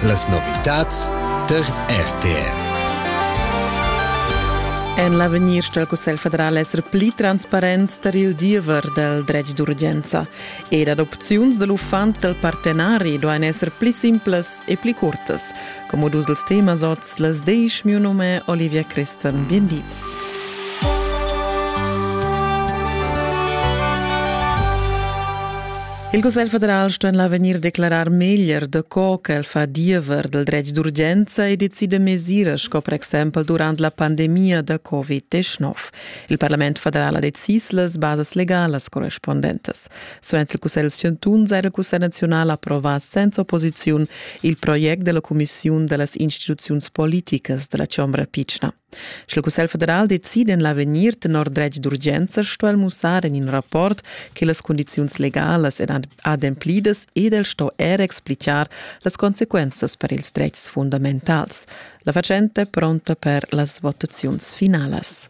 Las novitads tar RTR. En l'avegnir stel Cussegl federal esser pli transparents tar il diever dal dretg d'urgenza ed ad opziuns da l'uffant dal partenari duain esser pli simplas e pli curtas, come dus dels temas oz Las desch miu num è Olivia Christen. Bien di. Il Cussegl federal sta en l'avegnir declarar meglier da co che el fa diever del dretg d'urgenza e decide mesiras sco per exempel durant la pandemia da Covid-19. Il Parlament federal ha decis las basas legalas correspondentes. Suenter il Cussegl chantun ha il Cussegl naziunal approvà senza opposiziun il project della Commissiun dellas instituziuns politicas della Chombra Pitschna. Sche il Cussegl federal decide en l'avegnir tenor dretg d'urgenza, sto el mussar en in rapport che las condizions legalas èn ademplidas ed el sto er explicar las consequenzas per ils dretgs fundamentals. La facente pronta per las votaziuns finalas.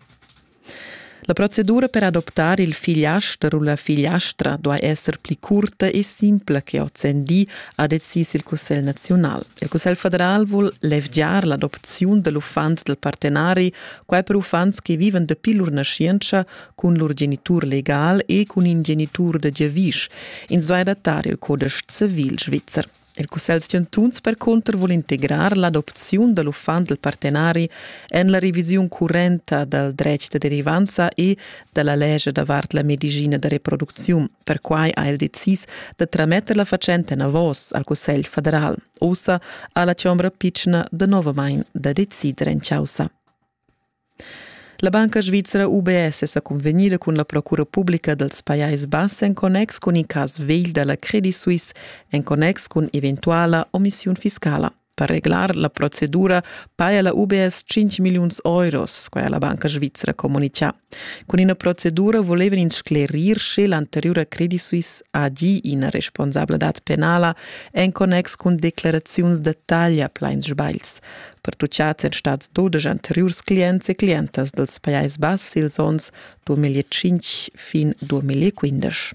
La procedura per adoptar il figliaster u la figliastra duai esser pli curta e simpla che ozendi, ha decis il Cussegl naziunal. Il Cussegl federal vul levgiar l'adopziun da l'uffant dal partenari, quai per uffants che vivan dapi lur naschientscha cun lur genitur legal e cun in genitur da giavisch. Ins duai adattar il codice civil svizzer. Il Cussegl chantuns percunter vul integrar l'adopziun da l'uffant dal partenari en la revisiun currenta dal dretg da derivanza e da la lescha davart la medicina da reproducziun. Perquai ha el decis da trametter la fatschenta enavos al Cussegl federal. Ussa ha la chombra pitschna danovamain da decider en chaussa. La banca svizra UBS è sa cunvegnida cun la procura publica dals Pajais Bass en connex cun in cas vegl da la Credit Suisse en connex cun eventuala omissiun fiscala. Per reglar la procedura paja la UBS 5 milliuns euros, quai ha la banca svizra communitgà. Cun ina procedura volevan ins sclerir sche l'anteriura Credit Suisse ha gì ina responsabladad penala en connex cun declaraziuns da taglia plain sbagls, pertuchads èn stads dudesch anteriurs clients e clientas dals Pajais Bass ils onns 2005 fin 2015.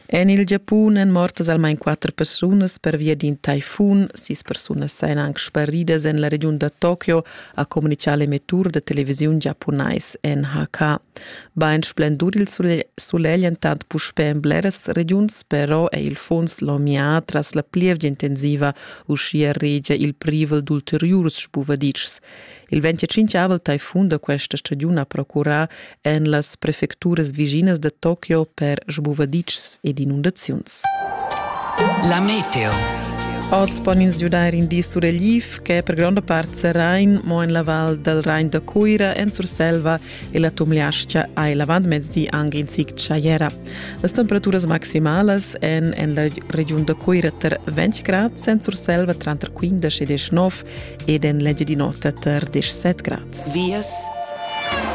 En il Giapun èn mortas almain quatter persunas pervia d'in taifun. Sis persunas sain anc sparidas en la regiun da Tokio, ha communitgà l'emettur da televisiun giapunais NHK. Bain splendur il sulegl entant puspè en bleras regiuns, però è il funs lomià tras la plievgia intensiva uschia regia il privel d'ulteriurs spuvaditschs. Il 25 taifun da questa stagiun ha procurà en las prefecturas viginas da Tokio per spuvaditschs ed inundaziuns. La meteo. Oz pon ins giudair in di suregliv che per gronda part serrain, mo en la val dal Rain da Cuira, en Surselva e la tumliascha ha il avantmezdi anc in zic tschajera. Las temperaturas maximalas èn en la regiun da Cuira tar 20 grad, en Surselva tranter 15 e 19 ed en l'Engiadin'Ota tar 17 grad. Vias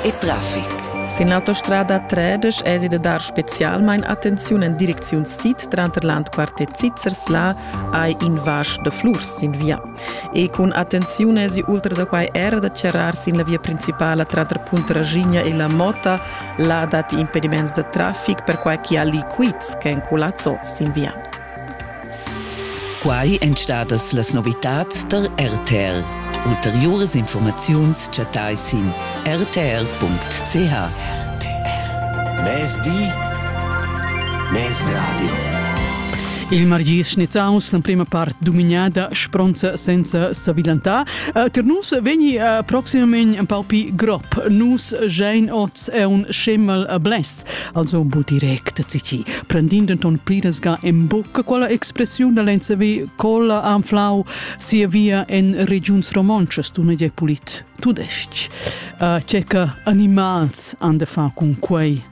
e traffic. Sin l'autostrada 13 èsi da dar spezialmain attenziun en direcziun sid tranter l'Andquart e Zizers. Là hai in vasch da flurs sin via. E cun attenziun èsi ultra da quai era da charrar sin la via principala tranter Puntraschigna e la Mota. Là datti impediments da traffic, perquai che ha liquids ch'èn culazzo sin via. Quai èn stadas las novitads tar RTR. Ulteriuras informaziuns chattai sin rtr.ch. RTR. Mezdi, Mezradio. Il margis Schnitzaus l'emprima part dumignada spronza senza sabilantar. Uh, tar nus vegni uh, proximamein un pau pi grop. Nus Jane Oz è un schemel uh, blest, also bu direct zici. Prendind ton pliresga en bucca quella expressiun da lenza vi colla anflau sia via en regiuns romontschas tu ne pulit tudesc. Uh, Ceca animals an de fa cun quei